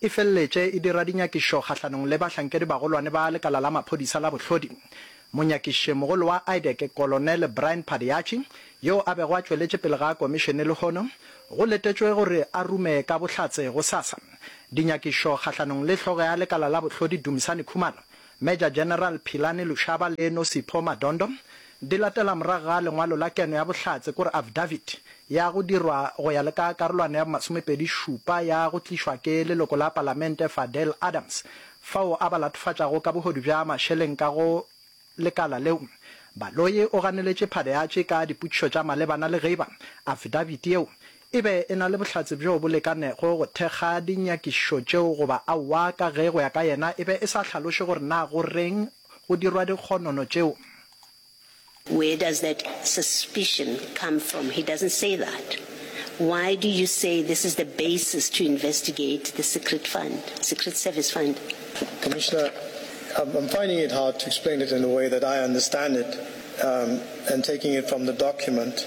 e feleletše e dira dinyakišo kgahlanong le bahlankedibagolwane ba lekala la maphodisa la bohlodi. Monyakišimogolo wa IDEC, Kolonele Brian Padeachi, yo a bego a tšweletše pele ga komišene lehono, go letetšwe gore a rume ka bohlatse gosasa dinyakišo kgahlanong le hlogo ya lekala la bohlodi Dumisani Khumalo, Major General Philani Lushaba le No Sipho Madondo, di latela morago ga lengwalo la keno ya bohlatse kore affidavit ya go dirwa go ya le ka karolwana ya bomasomepedi šupa ya go tlišwa ke leloko la palamente Fadel Adams fao a ba latofatšago ka bohodu bja mašeleng ka go lekala leo Baloyi o ganeletše phade ya tše ka dipotšišo tša malebana le geba affidavit yeo e be e na le bohlatse bjo bo lekanego go thekga dinyakišišo tšeo goba aowa ka ge go ya ka yena e be e sa hlaloše gore na go reng go dirwa dikgonono tšeo. Where does that suspicion come from? He doesn't say that. Why do you say this is the basis to investigate the secret fund, secret service fund? Commissioner, I'm I'm finding it hard to explain it in the way that I understand it, um, and taking it from the document.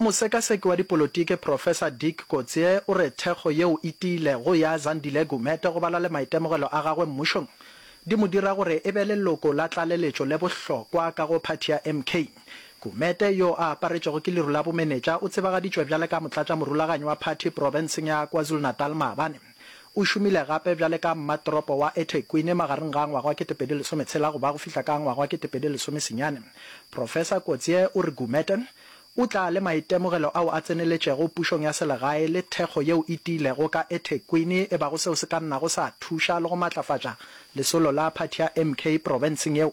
Mosekaseki wa dipolotiki Professor Dick Coetzee o re thekgo yeo e tiilego ya Zandile Gumede go bala le maitemogelo a gagwe mmušong di mo dira gore e be leloko la tlaleletšo le bohlokwa ka go phathi ya MK. Gumede, yo a aparetšwego ke leru la bomenetša, o tsebagaditšwe bjale ka motlatšamorulaganyi wa phathi profenseng ya KwaZulu-Natal maabane. O šomile gape bjale ka mmatoropo wa eThekwini magareng ga ngwaga wa 2013 go ba go fihla ka ngwaga wa 2010 senyane. Professor Coetzee o re Gumede o tla le maitemogelo ao a tseneletšego pušong ya selegae le thekgo yeo e tiilego ka eThekwini e bago seo se ka nnago sa thuša le go matlafatša lesolo la phathi ya MK profenseng yeo.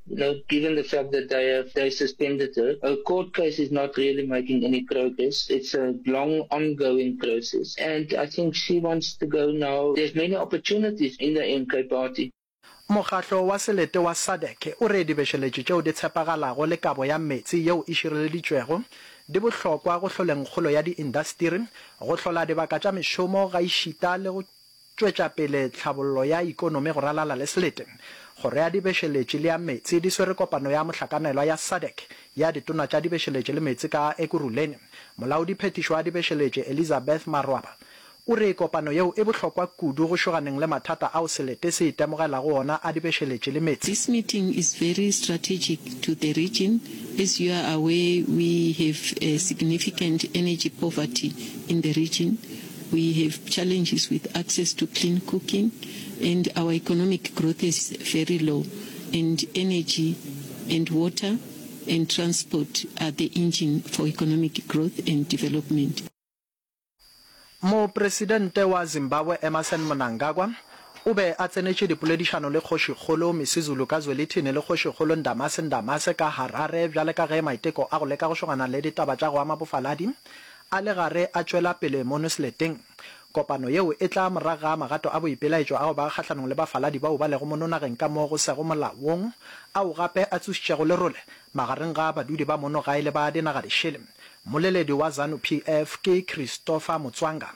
Now, given the fact that they have they suspended her, her court case is not really making any progress. It's a long, ongoing process, and I think she wants to go now. There's many opportunities in the MK party. Mokgatlo wa selete wa SADC o re dibešeletši tšeo di tshepagalago le kabo ya meetse yeo e šireleditšwego di bohlokwa go hloleng kgolo ya diindastiri, go hlola dibaka tša mešomo gaešita le go tšwetša pele tlhabollo ya ikonomi go ralala le Slete, Kgoro ya Dibešeletše le ya Meetse di swere kopano ya mohlakanelwa ya SADC ya Ditona tša Dibešeletše le Meetse ka Ekurhuleni. Molaodi phethišo wa Dibešeletše, Elizabeth Marwaba, o re kopano yeo e bohlokwa kudu go šoganeng le mathata ao Slete se itemogelago ona a dibešeletše le meetse. This meeting is very strategic to the region as you are aware we have a significant energy poverty in the region, We have challenges with access to clean cooking and our economic growth is very low and energy and water and transport are the engine for economic growth and development. Mopresidente wa Zimbabwe Emmerson Mnangagwa o be a tsenetše dipoledišano le Kgošikgolo Misuzulu ka Zwelithini le Kgošikgolo Ndamase Ndamase ka Harare bjale ka ge maiteko a go leka go šogana le ditaba tša go ama bofaladi A le gare a tšwela pele mo Nusleteng. Kopano yeo e tla morago ga magato a boipelaetšo ao ba kgahlanong le bafaladi bao ba lego mo nonageng ka mo go sego molaong, ao gape a tsošitšego lerole magareng ga badudi ba mono gae le ba dinagadišele. Mmoleledi wa Zanu PF ke Christopher Mutswanga.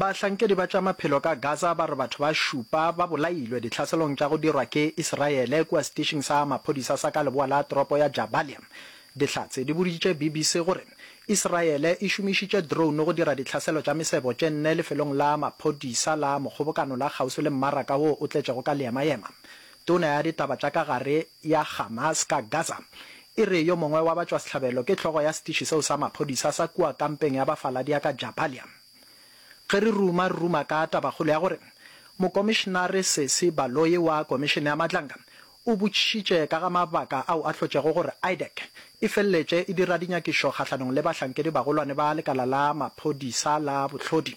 Bahlankedi ba tša maphelo ka Gaza ba re batho ba šupa ba bolailwe dihlaselong tša go dirwa ke Iseraele kua setišing sa maphodisa sa ka leboa la toropo ya Jabalia. Dihlatse di boditše BBC gore Iseraele e šomišitše drone go dira ditlhaselo tša mesebo tše nne lefelong la maphodisa la Mokgobokano la kgauswi le mmaraka wo o tletšego ka leemayema Tona ya ditaba tša ka gare ya Hamas ka Gaza e re yo mongwe wa batšwasehlabelo ke hlogo ya setiši seo sa maphodisa sa kua kampeng ya bafaladi ya ka Jabalia. Ge re ruma, re ruma ka tabakgolo ya gore Mokomišenare Sesi Baloyi wa Komišene ya Matlanga o botšišitše ka ga mabaka ao a hlotšego gore IDAC e feleletše e dira dinyakišo kgahlanong le bahlankedi bagolwane ba lekala la maphodisa la bohlodi.